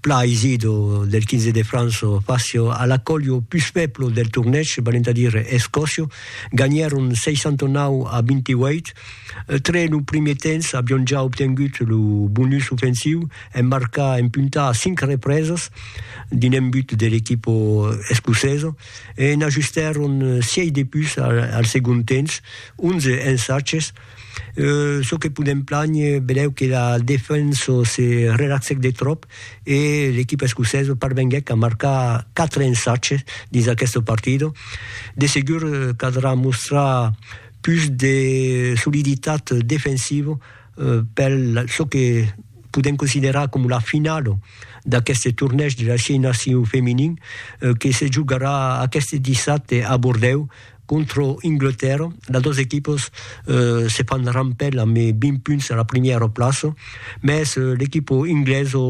Pla Isido del 15 de Franço facio a la colio pus feblo del tornèch, valent a dire Escòcio, ganhèron 69 a 28. Tre lo primier temps avion ja obtengut lo bonus ofensiu en marcar en punta a 5 represas d'un embut de l'equipa escocesa e n'ajustèron 6 de pus al segond temps, 11 ensatges. çò que podèm planher, benlèu que la defensa se relaxèc de tròp e l'equipa escocesa parvenguèc a marcar 4 ensatges dins aquesta partida. De segur caldrà mostrar pus de soliditat defensiva per çò que podèm considerar coma la finala d'aqueste tornèig de las 6 nacions feminin que se jogarà aqueste dissabte a Bordèu, Contra Anglatèrra, las dos equipas se fan rampèl amb 20 punts a la primièra plaça, mès l'equipa inglesa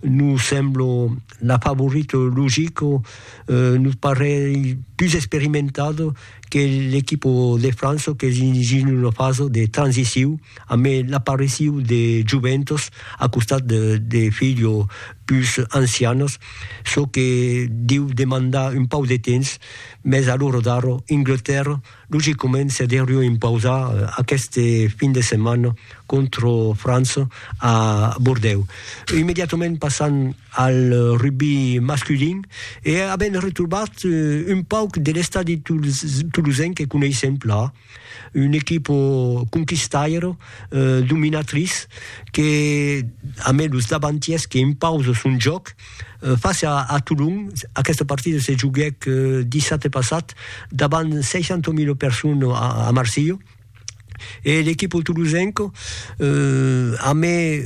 nos sembla la favorita logica, nos parelh pus experimentada que l'equipa de França qu'es dins una fasa de transiciu amb l'apariciu de joventas a costat de filhas pus ancianas, çò que deu demandar un pauc de temps Mès a l'ora d'ara, Inglatèrra logicament se deurió impausar aqueste fin de setmana contra França a Bordèu. Immediatament passam al rugbi masculin e avèm retrobat un pauc de l'estadi tolosenc que coneissèm plan. Un equipo conquistairo, dominatriç, que a mai los davantiers que impausa son jòc, face a Tolon, aquesta partida se joguèc dissabte passat davant 60.000 personas a Marsilha, e l'equipo tolosenca a mai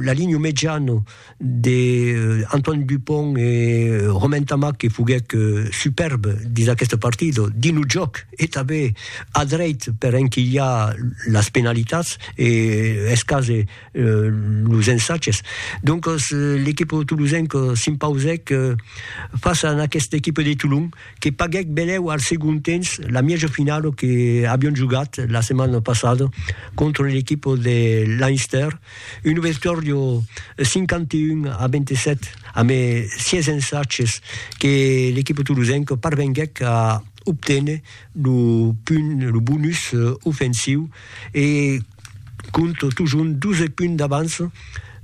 la linha mediana, de Antoine Dupont e Romain Tamac que foguèc superbe dins aqueste partit, dins lo jòc e tanben a dreit per enquilhar las penalitats e escàs los ensatges. Doncas l'equip tolosenc s'impausèc fàcia a aquesta equipa de Tolon que paguèc benlèu al segond temps la mièja finala que avián jogat la setmana passada contra l'equipa de Leinster. Un auditorio 51 a 27 amé 6 ensatges que l'equipa tolosenca parvenguèc a obténer lo punt, lo bonus ofensiu e compte totjorn 12 punts d'avança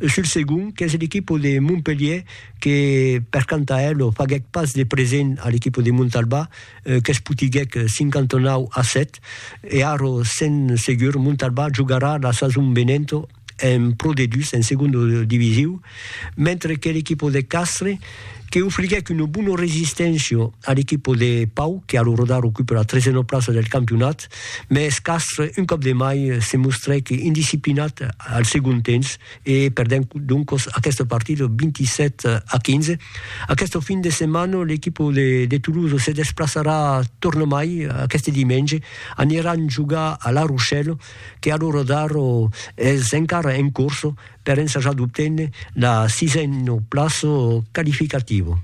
sul segond qu'es l'equipa de Montpelhièr que per canta ela faguèc pas de present a l'equipa de Montalbà. Qu'es putiguèc 59 a 7 e Aro sen segur Montalbà jogarà la sason venenta en Pro D2, en segonda divisiu, mentre que l'equipa de Castres que ofriguèc una bona resisténcia a l'equipa de Pau que a l'orador ocupa la tresena plaça del campionat, mès Castres un còp de mai se mostrèc indisciplinat al segon temps, e perdent doncos aqueste partido 27 a 15. Aqueste fin de setmana l'equipa de Toulouse se desplaçarà tornamai aqueste dimenge, aniran jogar a La Rochelle que a l'ora d'ara es encara en corsa per ensajar d'obténer la sisena plaça qualificativa.